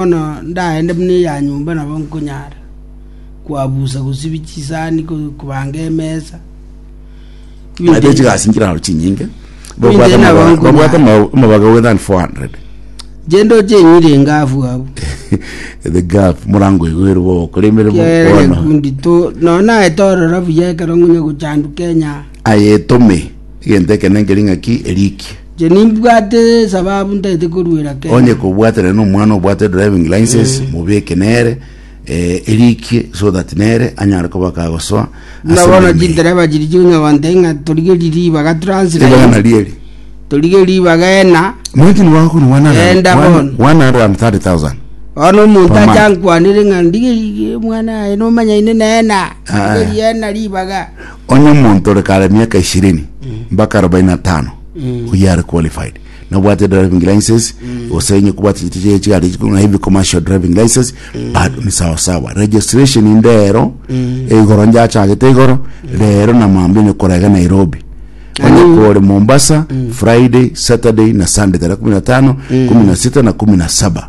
Bono ndaende buna eya nyomba nabo nkonyara koabusa gosibia chisani, kobanga emesa. Naende chigasi nchiraro chinyinge, babwate amabaga- babwate ama- amabaga more than 400 Inche ndoche enyiri engafu abwo. the gap morango igo ere bogokora emeremo Kiagera bono gekundi to nonye naete ororo buya ekero ngonya gochanduka enyaa. aye etome egento ekene nkeria ng'aki erikie Inche nimbwate esababu ntaete koruera kende. Onye kobwatanire na omwana obwate driving license mobeke nere eh, erikie so that nere anyare koba kagosoa Buna ase bono omonene. chindereba chiri chionya gontee ng'a torigerie ribaga Ribaga translate nari eri torigerie ribaga ena mwiti nigo agokora Enda bono. 130000 bono omonto Omana. acha ankwanere ng'a ndigerie omwana aye nomanyaine nena Ah. ndigerie ena ribaga Onye omonto ore kare emiaka ishirini mpaka arobaini na tano oyio are qualified nobwate driving license gose onye kobwate chitichi chie chigari echi kona heavy commercial driving license bado ni sawa sawa registration inde ero igoro njachagete igoro rero na mambia onye korega Nairobi onye kore Mombasa Friday Saturday na Sunday tarehe kumi na tano kumi na sita na kumi na saba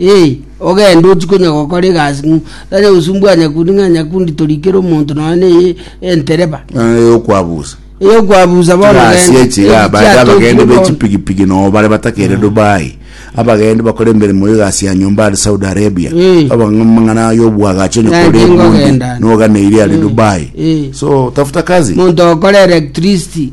Ee, ogende ochie konya gokora egasi ng'u- tanya gosumbua nyakundi ng'a nyakundi torikere omonto nonya na eye entereba. Ng'a eyokwabusa Eyokwabusa bono gasi genda, echi iga echi baria chiatoki abagende bono. bechipigipigi noo bare batakeire dubai abagende bakore emeremo ya egasi ya nyomba are saudi arabia Eh. abang'a amang'ana ya obwagacho Naende nyakore ebundi ngogenda. noganeiri are dubai Eh. so tafuta kazi Monto okora electricity.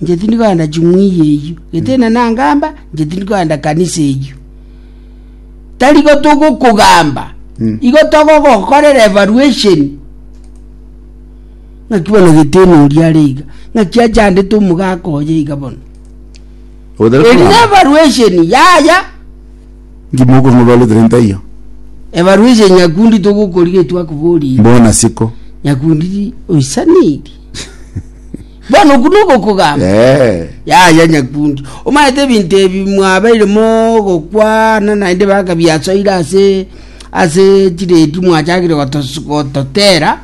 Inche tindi kogenda ching'uya eyio, gete inee nangamba? Inche tindi kogenda kanisa eyio. Tari igo togokogamba, igo togogokorera evaluation. Ng'aki bono gete inee oria are iga, ng'aki achandete omogaka oye iga bono. Ogotera Eri kogamba. nevaluation yaya, Inki mokomobarutere ntaiyo? evaluation nyakundi togokorigia etwakoborire. Mbona siko. Nyakundi oisaneiri. Bono okwo nogokogamba? Yaya, nyakundi, omaete ebinto ebi mwabeire mogokwana naende baka biasoire ase ase chiredi mwachakire gotos- gototera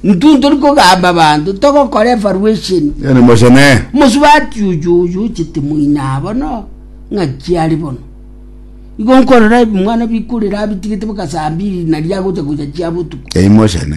intwe ntori kogamba abanto togokora evaluation Yaani mosene. mosubati oyo oyo ochete moina abo no ng'aki are bono igo nkorora ebimwana bikorera abitigete baka saa mbiri nari agocha gocha chia botuko Eywo mosene.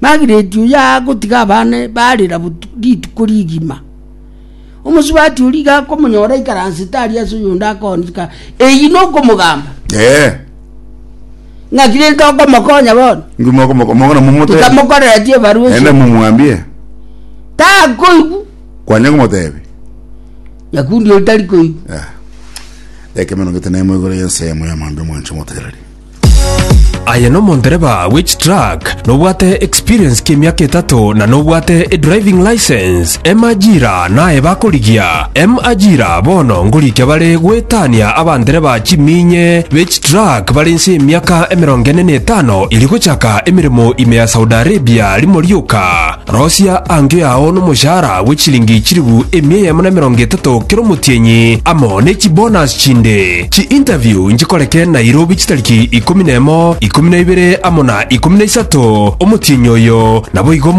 Magireti oyo agotiga abana barera rituko rigima. Omosubati oria iga akomonyora aikaransete aria ase oyonde akoonchika, eyio nokomogamba. Eh. Ng'aki rente okomokonya bono? Ngimo okomoko mongana momote. Tikamokoreretie ebarua Ende ase. mumwambie. Takoigwa. Kwanya komotebi. Nyakundi oyo tari koigwa. Eh. Ekemeno gete nemo igoro y'ensemo y'amambia omwanche omotegereri. Aye nomondereba bwe chitruck, nobwate experience ki'emiaka etato na nobwate edriving license. Emajira naye bakorigia. Emajira bono ngorikia bare goetania abandereba chiminye be chitruck bare inse y'emiaka emerongo ene na etano iri gochaka emeremo ime ya Saudi Arabia rimo rioka. Rosia angio yao nomoshahara bwe chilingi chilifu emia eyemo na emerongo etato kera omotienyi, amo ne chibonus chinde. Chi-interview nchikoreke Nairobi chitariki ikomi na emo, ikomi na ibere amo na ikomi na isato, omotienyi oyo naboigo.